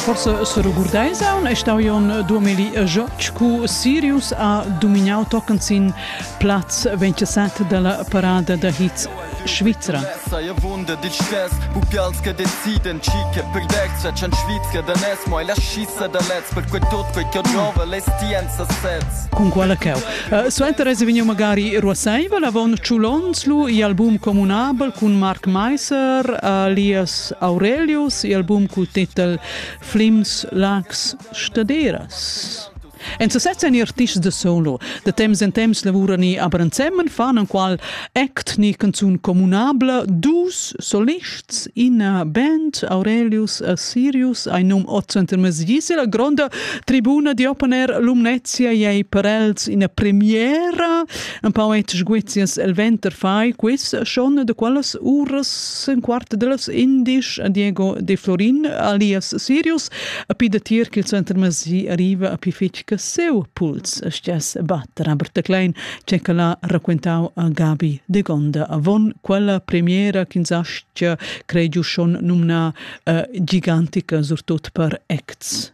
Forse seregurdeis aun è stau jon duemili Jotsch cu Sirius ha dominau tochen sin Platz 27 della parada da hits Svizra. Saja wunder dich stess, bu pials che deciden chi che per dextra chan Svizra da nes, mo la scissa da lez per quei tot quei che nova le stienza sez. Con quella cheu. Uh, Suenter es vegniu magari ruaseivel avon Ciulons lu i album communabel cun Mark Meiser, alias Aurelius e album cul titel Flims, Lags, Staderas. En sa setzen artists de solo. De temps en temps lavurani aber ensemen fan enqual act ni canzun communabla dus solists ina band Aurelius a Sirius ein num Otzenter Mesgisi la gronda tribuna di opener Lumnezia ei per els ina premiera Empau ei sguizias el venter fai quiz schon de quellas uras in quart de las indisch a Diego De Florin alias Sirius a pi de tier che il center masi arriva a pi fitg che seu puls stess bat Robert de Klein che che l'ha raccontau a Gabi De Gonda avon quella premiera ch'insastia creigiu schon numna uh, gigantica surtut per acts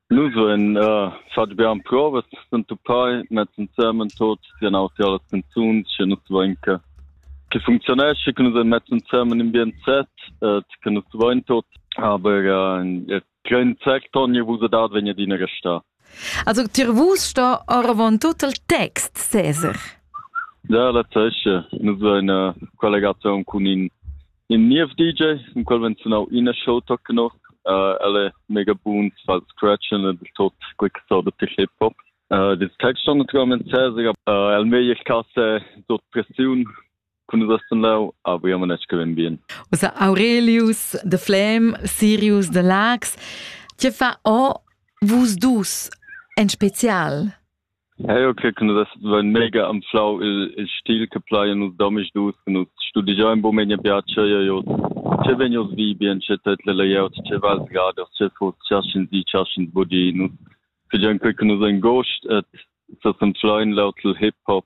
Nus vein uh, fatg bia emprovas s'entupai mez ensemen tot sian autri las canzuns che nus vein che che funzionesce che nus ein mezz ensemen in bien set uh, che nus vein tot aber uh, kein Zweck Tonje wo dat wenn ihr dine gesta Also dir vus sta oravon tut il text Cesar. Ja, la zeche. Nus vein uh, collegazion cun in In niev DJ, in quel vegn sunau ina show toc noch. Uh, el è mega buns, fa il scratchen e del tot quick so da hip hop. Uh, das Text schon naturalmente sehr, sehr, uh, el mei ich kasse dort Pressiun kun das dann lau, aber ja man nicht gewinn bien. Also Aurelius, The Flame, Sirius, The Lax, tje fa o vus dus en spezial? Eu cre che nus vain mega anflau il, il stil che plaja nus domisdus, che nus studigiain bo memia piatscha e hoz. Che vegn hoz vi bien, che tut le layout, che val sgaders, che fos, cha sch'ins di, cha sch'ins bodi. Nus figiain quei che nus ain gost et sa s'anflain laut il hip-hop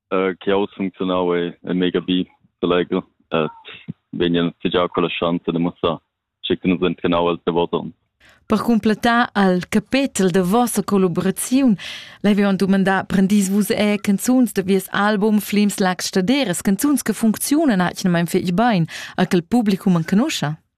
uh, che jau funcziunau e, e mega bi selegel et vegnan figiau con la chance de mussar che que nus entrenau als davos Per completar al capetel de vossa collaboraziun l'havevan dumandà prendis vus e canzuns de vies album Flims Lags Staderes, canzuns che funzionan atgnamain fetg bein, a che il publicum enconoscha?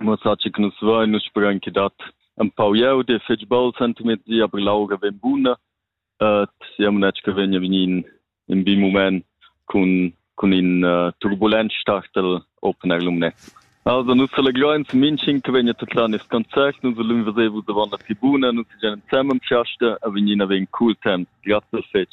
Mo enzatgei che nus vein, nus sperein ch'i dat empau glieud e fetg bel sentimiezi, aber l'aura vegn buna. sia munetsch che vegn a vegnir in, in bi mument cun, cun in uh, turbulent start el Open Air Lumnezia. Also nus selegreins minching che vegn a tatlar nest concert, nus ulun vesevu davant la tribuna, nus segian ensemem chiaste a vegnir a vegn cool temps. Grazie fetg.